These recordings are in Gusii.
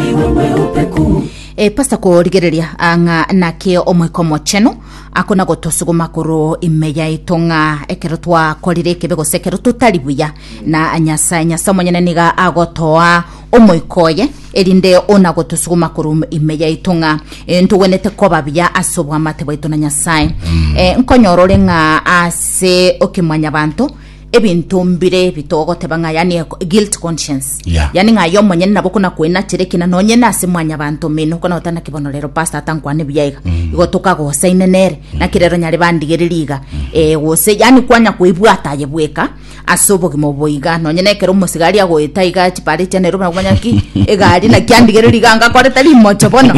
iwe mweupe ku. E Pastor korigereria ah, ng'a naki omoika omochenu akona gotosuguma korwa ime yaito ng'a ekero twakorire ekebe gose ekero totari buya na nyasae nyasae omonyene niga agotoa omoika oye erinde ona gotosuguma korwa ime yaito ng'a eh, ntogwenerete koba buya ase obwamate bwaito na nyasae Eh, nkonyora ore ng'a ase okimwanyabanto ebinto mbire bitogoteba ng'a yani a guilt conscience Yeah. yani ng'a aye omonyene nabo kona kwenachera ekina nonye na ase mwanyabanto omino kona otana kibono rero pastor atankwane buya iga igo tokagosaine nere naki rero nyare bandigererie iga eh, gose yani kwanya koebwata aye bweka ase obogima obo iga nonye na ekero omosigari agoeta iga chipare chia nairobi nakomanya ki egari naki andigererie iga ngakorete rimocho bono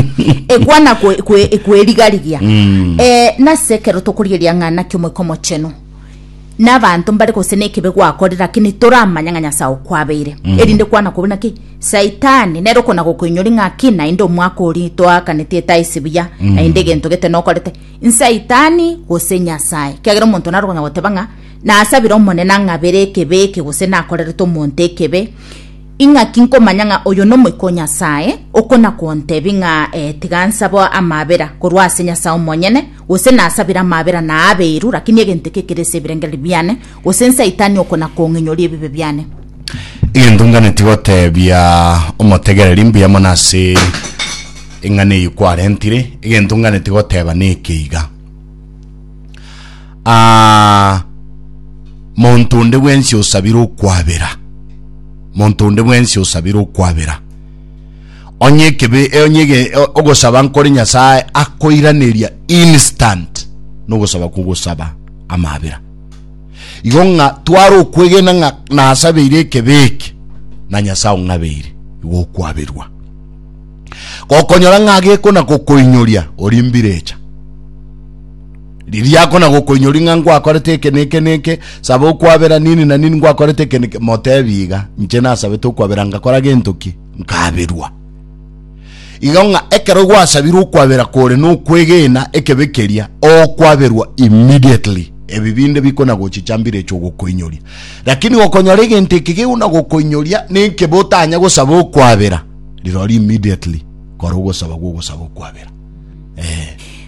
ekwana kwe- kwe- kwerigarigia eh, nase ekero tokorigeria ng'a naki omoika omochenu nabanto mbare gose nekebe gwakorire lakini toramanya ng'a nyasae okwabeire mm. erinde kwana kobe naki saitani nero kona gokoinyori ng'aki naende omwaka ori toakaneti etae sibuya mm. naende egento gete nokorete nsaitani gose nyasae kiagera omonto naro konya goteba ng'a nasabire omonene ang'abere ekebe eke gose nakorerete omonto ekebe ing'aki nkomanya ng'a oyo nomoiko nyasae okona kontebi ng'a eh, tiga nsaba amabera korwa ase nyasae omonyene Gose nasabire amabera na abeiru, lakini egento eke ekerese ebirengererio biane, gose nsaitani oko na kong'inyoria ebibe biane. Egento nganeti gotebia omotegereri mbuya mono ase eng'ana eyio kwarentire, egento nganeti goteba neke iga, ah, monto onde bwensi osabire okwabera, monto onde bwensi osabire okwabera. Onye ekebe e- onye ege- o- ogosaba nkore Nyasae akoiraneria instant nogosaba kogosaba amabera. Igo ng'a tware okwegena ng'a nasabeire ekebe eke na Nyasae ong'abeire igo okwaberwa. Gokonyora ng'a gekona gokoinyoria ori mbirecha riria akona gokoinyori ng'a ngwakorete eke neke neke saba okwabera nini na nini ngwakorete eke neke motebi iga inche nasabete okwabera ngakora gento ki nkaberwa. Igo ng'a ekero gwasabire okwabera kore nokwegena ekebe keria, okwaberwa immediately. Ebi binde bikona gochicha mbire echo gokoinyoria. Lakini gokonyora egento eke gegona gokoinyoria nekebe otanya gosaba okwabera, rirori immediately kora ogosaba gw'ogosaba okwabera.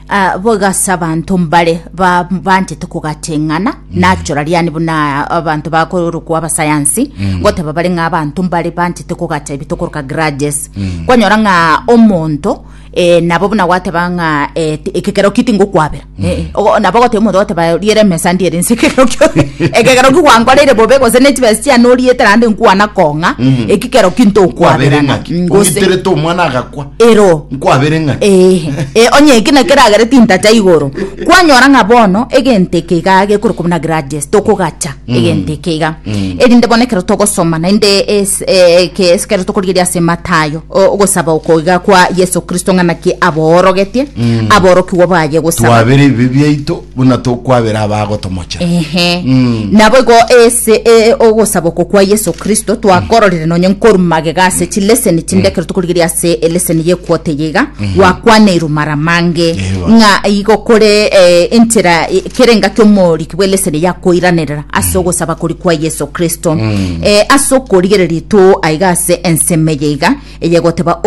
Ah, boigo ase abanto mbare ba- banchete kogateng'ana nachora riani buna abanto bakorokwa abasayansi goteba bare ng'a abanto mbare banchete kogata ebitokoroka grudges kwanyora ng'a omonto eh, nabo buna gwateba ng'a eh, ti- ekekero ki tingokwabera Eh, ogo- nabo ogoteba omonto ogoteba riera emesa ndiere nse ekero kio ekekero ki gwankoreire bobe gose ne chibesa chiane oriete naende nkwana kong'a ekikero ki ntokwabera ng'aki Mm, gose ongiterete omwana agakwa ero nkwabere ng'aki ehe Eh, onye eki na keragere tintacha igoro kwanyora ng'a bono egento eke iga gekore kobuna grudges tokogacha egento eke iga erinde bono ekero togosoma naende es- eh, eke- ekero tokorigereria ase matayo o- ogosaba oko iga kwa yeso kristo ng'a naki aboorogetie aborokigwa baye gosaba twabera ebibe biaito buna tokwabera abagotomochera ehe nabo igo ase e- ogosaba oko kwa yeso kristo twakororire nonye nkoru magega ase chileseni chinde ekero tokorigereria ase eleseni yekwota eye iga gwakwaneirwe mara mange Ewa. ng'a igo kore eh, enchera eh, kere engaki omori bw'eleseni ya koiranerera ase mm. ogosaba kori kwa Yeso Kristo mm. e, ase okorigereria itoo aiga ase ensemo eye iga eyegoteba